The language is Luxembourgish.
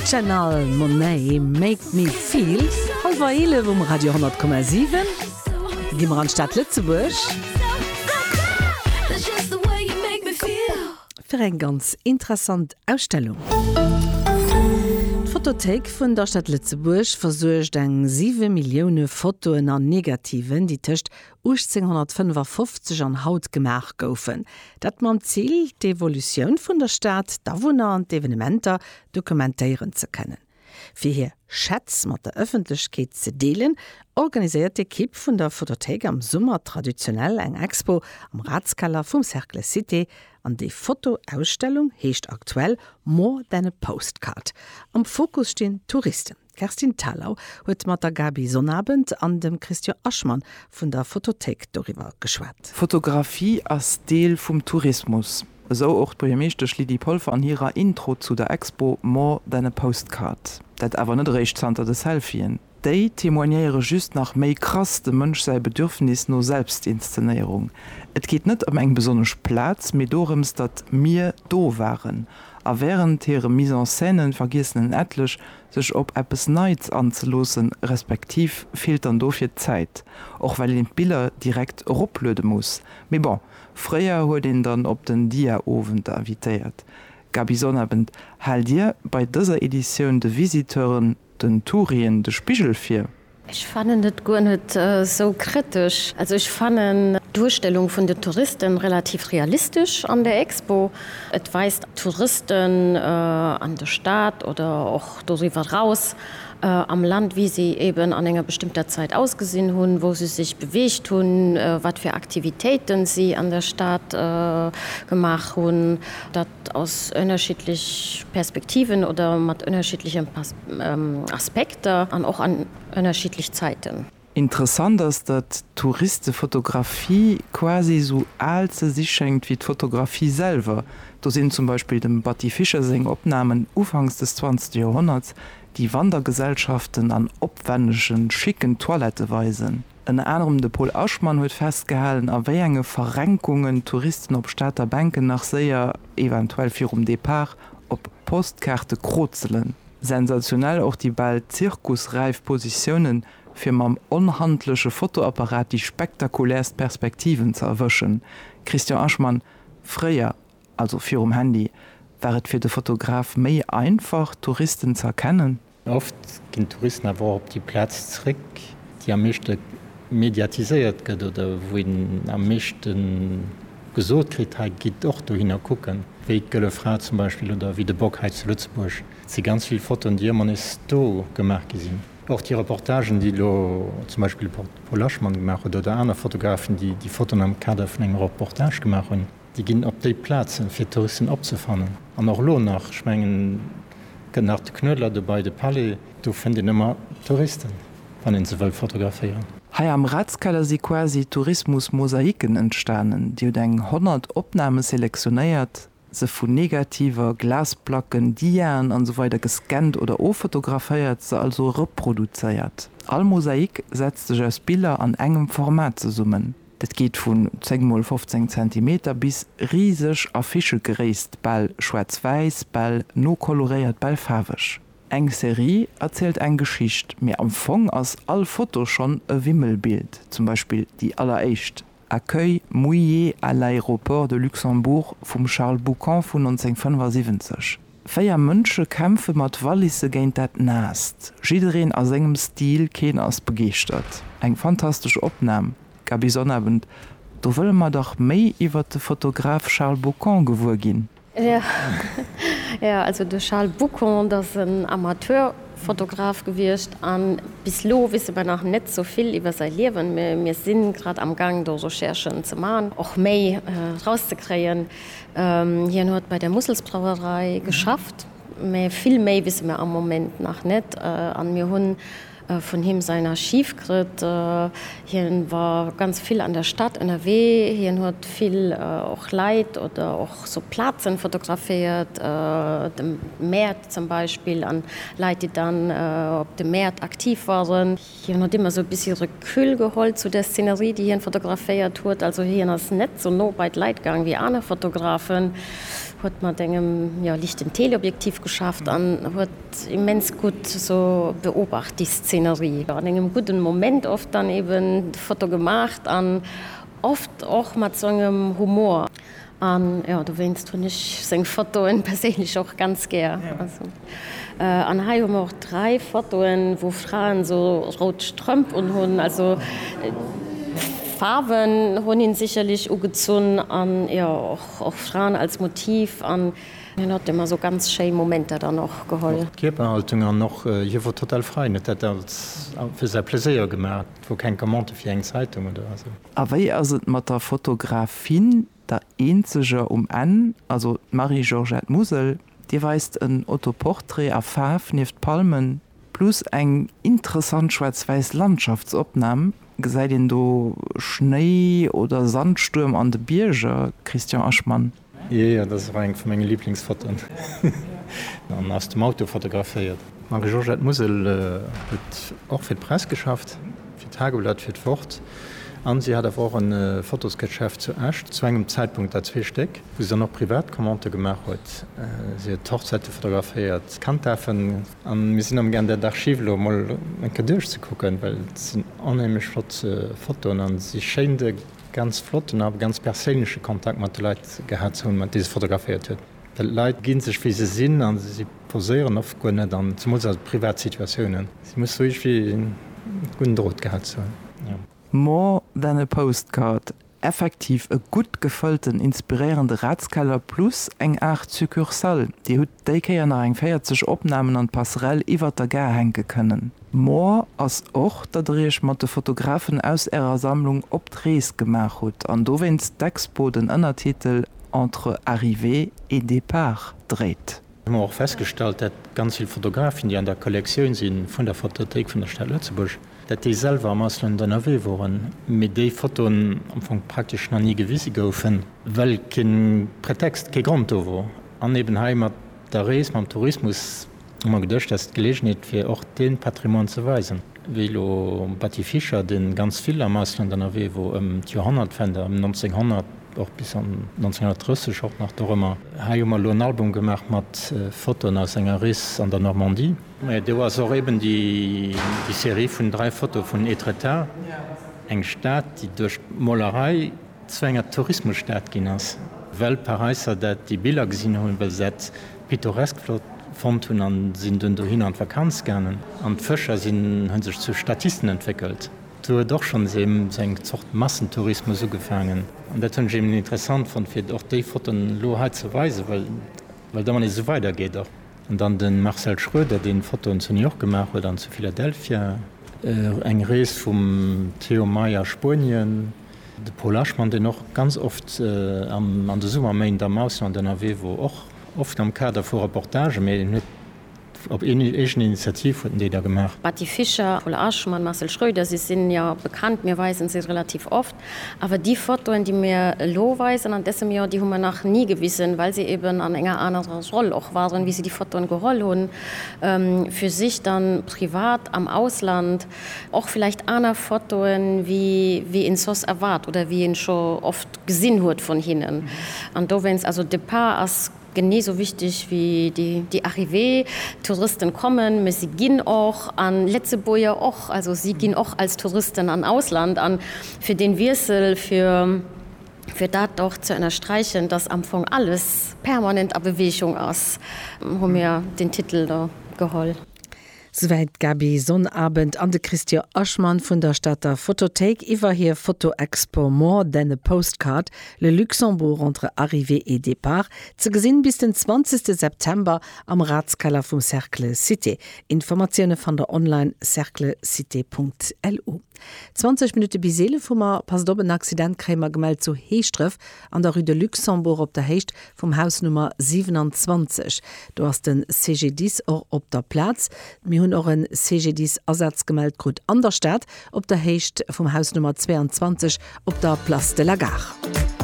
Janelle Monáe, Make me feel, halwer 11 um Radio 10,7. Gi mer an d'Stad Lëtzebuerg. Fir eng ganz interessant Ausstellung. D'Fotothéik vun der Stad Lëtzebuerg versuergt eng 7 Millioune Fotoen an Negativen, déi tëscht 1855 an haut gemaach goufen. Dat mam Zil, d'Evolutioun vun der Stad, d'Awunner an d'Evenementer dokumentéieren ze kënnen. Fir hir Schätz mat der Ëffentlechkeet ze deelen, organiséiert d'Ekipp vun der Photothéik am Summer traditionell eng Expo am Ratskeller vum Cercle Cité an déi Fotoausstellung heescht aktuell More than a postcard. Am Fokus stinn d'Touristen. D'Kerstin Thalau huet mat der Gaby Sonnabend an dem Christian Aschman vun der Photothéik doriwwer geschwat. Fotografie ass Deel vum Tourismus, esou och d'Buergermeeschtesch Lydie Polfer an hirer Intro zu der Expo More than a postcard. Dat awer net eréischt zanter de Selfien. Déi témoignéiere just nach méi krass dem Mënsch säi Bedürfnis no Selbstinszenéierung. Et geet net ëm eng besonnesch Plaz, mee dorëms, datt mir do waren. A während hire Mise en scènen vergiessen en etlech, sech op eppes Neits anzeloossen, respektiv feelt dann dofir d'Zäit, och well een d'Biller direkt eropluede muss. Mee bon, fréier huet een dann op den Dia-Owend invitéiert. Gaby Sonnabend, Haalt Dir bei dëser Editioun de Visiteuren, den Tourien, de Spigel vir? Ech fannen et guer net sou kritesch. Also ech fannen d'Duerstellung vun den Touristen relativ realistesch an der Expo. Et weist Touristen an der Stad oder och doriwwer raus am Land wéi se eben an enger bestëmmter Zait ausgesinn hunn, wou se sech beweegt hunn, wat fir Aktivitéiten si an der Stad gemaach hunn. ass ënnerschiddlech Perspektiven oder mat ënnerschiddleche Aspekter an och an ënnerschiddlech Zäiten. Interessant ass, datt d'Touristefotografie quasi esou al ze si schéngt wéi d'Fotografie selwer. Do sinn zum Beispill dem Batty Fischer seng Opnamen ufanks des zwanzegste Joerhonnerts, déi Wandergesellschaften an opwännege schicken Toilette weisen. Ënner anerem de Pol Aschmann huet festgehalen, a wéi enge Verrenkungen d'Touristen op Stater Bänken nach séier, eventuell virum Depart, op Postkaarte krozelen. Sensationell och déi bal zirkusräif Positiounen, fir mam onhandleche Fotoapparat déi spektakulärst Perspektiven ze erwëschen. Christian Aschmann, Fréier, also virum Handy, war et fir de Fotograf méi einfach, d'Touristen ze erkennen? Oft ginn d'Touristen awer och op déi Plaz zréck, déi am meeschte mediatiséiert gëtt oder wou een am meeschte gesot kritt, hei gitt och dohinner kucken, wéi d'Gëlle Fra zum Beispill oder wéi de Bock hei zu Lëtzebuerg. Et si ganz vill Fotoen, déi ëmmer nees do gemaach gi sinn. Och déi Reportagen, déi elo zum Beispill de Paul Laschmann gemaach huet oder aner Fotografen, déi déi Fotoen am Kader vun engem Reportage gemaach hunn. Déi ginn op déi Plazen, fir d'Touristen opzefannen. An och elo nach, ech mengen, gëtt nach de Knuedler dobäi, de Palais, do fënnt een ëmmer Touristen, wann ee se wëll fotograféieren. Hei am Ratskeller si quasi Tourismus-Mosaiken entstanen. Dir hutt eng 100 Opname selektionéiert, se vu Negativer, Glasplacken, Diaen an esou weider gescannt oder offotograféiert, se also reproduzéiert. All Mosaik setzt sech aus Biller an engem Format zesummen. Dat geet vun 10 mol 15 Zentimeter bis riseg Affichegréisst, bal schwaarz-wäiss, bal nokoloréiert, bal faarweg. Eng Serie erzielt eng Geschicht, mee am Fong ass all Foto schonn e Wimmelbild, zum Beispill déi alleréischt, Accueil mouillé à l'aéroport de Luxembourg vum Charles Boucant vun 1975. Véier Mënsche kämpfe mat Wallisse géint dat Naasst. Jiddereen a sengem Stil, keen ass begeeschtert. Eng fantastesch Opnam, Gaby Sonnabend. Do wëlle mer dach méi iwwert de Fotograf Charles Bocon gewuer ginn. Jo, also de Charles Bocon, dat ass en Amateurfotograf gewiescht a bis elo wisse mer nach net sou vill iwwer säi Liewen. Mir si grad am Gaang do Recherchen ze maachen, och méi rauszekréien. Hien huet bei der Musselsbrauerei geschafft, mä vill méi wisse mir am Moment nach net. An mir hunn vun him säin Archiv krëtt. Hien war ganz vill an der Stad ënnerwee. Hien huet vill och Leit oder och sou Plazen fotograféiert, de Mäert zum Beispill an Leit déi dann op de Mäert aktiv waren. Hien huet ëmmer esou e bessi Recul geholl zu der Szenerie, déi hien fotograféiert huet. Also hien ass net esou no bei d'Leit gaang wéi aner Fotografen, huet mat engem, jo, lichten Teleobjektiv geschafft an huet immens gutt esou beobacht, déi Szenerie, an engem gudden Moment oft dann eben d'Foto gemaacht an oft och mat esou engem Humor. An jo, dowéinst hunn ech seng Fotoen perséinlech och ganz gär. An hei hu mer och 3 Fotoen, wou Fraen sou rout Strëmp un hunn. Also Faarwen hunn hinn sicherlech ugezunn an jo och Fraen als Motiv. An hien huet emmer sou ganz schéi Momenter dann och geholl. Kierperhaltung an och hie wor total frei, en huet dat als fir säi Pleséier gemaach. Wor keng Commande fir eng Zeitung oder esou? A wéi ass et mat der Fotografin, der eenzeger um Enn, also d'Marie-Georgette Musel, Dir weist en Autoportrait a Faarf nieft Palmen, plus eng interessant schwaarz-wäiss Landschaftsopnam, gesäit een do Schnéi oder Sandstuerm an de Bierger? Christian Aschman. Jee, jo, dat ass och eng vu menge Liblingsfotoen. An aus dem Auto fotograféiert. D'Marie-Georgette Musel huet och fir d'Press geschafft, fir d'Tageblatt, fir d'Wort. An si hat awer och e Fotosgeschäft zu Esch, zu engem Zäitpunkt der zwee Stéck, wou si dann och privat Commandë gemaach huet. Si huet d'Hochzäite fotograféiert, d'Kanddaafen. A mir sinn am Gaang, där d'Archiv elo emol eng Kéier duerchzekucken, well et sinn onheemlech flott Fotoen a si schéint e Ganz flotten a ganz perséinleche Kontakt mat de Leit gehat ze hunn, mat deene se fotograféiert huet. D'Leit gi sech wéi se sinn a si poséieren oft guer net an, zemools a privat Situatiounen. Si muss sou iergwéi en gudden Drot gehat ze hunn. More than a postcard, effektiv e gutt gefëllten, inspiréierende Ratskeller plus eng Aart Succursale. Dir hutt déi Kéier nach eng 40 Opnamen an d'Passerelle iwwert der Gare hänke kënnen. More ass och, datt der Iech mat de Fotografen aus Ärer Sammlung op d'Rees gemaach hutt an dowéinst d'Expo den Ënnertitel Entre arrivée et départ dréit. Mir hunn och festgestallt, dat ganz vill Fotografen, déi an der Kollektioun si vun der Fotothéik vun der Stad Lëtzebuerg, dat déi selwer am Ausland ënnerwee woren, mee déi Fotoen am Fong praktesch nach ni gewise goufen, well kee Pretext, kee Grond do wor an eben hei mat der Rees, mam Tourismus. Hu mer geduecht, dat ass d'Gelegenheet fir och dee Patrimoine ze weisen, wéi elo Batty Fischer, dee ganz vill am Ausland ënnerwee wor ëm d'Joerhonnertwende, ëm 1900 och bis an 1930 och nach dorëmmer. Hei hu mer elo en Album gemaach mat Fotoen aus senger Rees an der Normandie. Mä do ass och eben déi Serie vun dräi Fotoe vun Étretat, eng Stad, déi duerch d'Molerei zu enger Tourismusstad ginn ass, well d'Paräisser dat déi Biller gesinn hunn, well se dat pittoresk flott fonnt hunn an sinn dunn dohinner an d'Vakanz gaangen. An d'Fëscher sinn hunn sech zu Statisten entwéckelt. Do huet och schonns ee sou eng Zort Massentourismus ugefaangen. An dat hunn ech eben interessant fonnt fir och déi Fotoen elo hei ze weisen, well well da wann ee sou weider geet och. An dann de Marcel Schroeder deen Fotoen zu New York gemaach huet an zu Philadelphia. Eng Rees vum Theo May a Spuenien. De Paul Aschmann, deen och ganz oft an de Summerméint am Ausland ënnerwee wor, och oft am Kader vu Reportagen, mä en huet op eegen Initiativ huet en déi da gemaach. Batty Fischer, Paul Aschmann, Marcel Schröder, si sinn jo bekannt, mir weisen se relativ oft, awer déi Fotoen, déi mir elo weisen an dësem Joer, déi hu mer nach ni gewisen, well se eben an enger anerer Roll och waren, wéi se déi Fotoen geholl hunn, fir sech dann privat am Ausland. Och villäicht aner Fotoen, wéi een soss erwaart oder wéi een scho oft gesinn huet vun hinnen. An dowéinst, also Départ ass genee esou wichteg wéi déi Arrivée. Touristen kommen, mä si ginn och, an Letzebuerger och. Also si ginn och als Touristen an Ausland. An fir deen Wiessel, fir dat och ze ënnersträichen, dass am Fong alles permanent a Bewegung ass, hu mir deen Titel do geholl. Souwäit d'Gaby Sonnabend an de Christian Aschman vun der Stater Photothéik iwwer hir Fotoexpo More than a postcard, Le Luxembourg entre arrivée et départ, ze gesinn bis den 20 September am Ratskeller vum Cercle Cité. Informatioune fannt der online, cerclecité.lu. 20 Minutte bis 11 hu mer, passt op, en Accident kréie mer gemellt zu Heeschdref, An der Rue de Luxembourg op der Héicht vum Haus Nummer 27. Do ass de CGDIS och op der Plaz. Mir hunn och e CGDIS-Asaz gemellt krut an der Stad, op der Héicht vum Haus Nummer 22 op der Place de la Gare.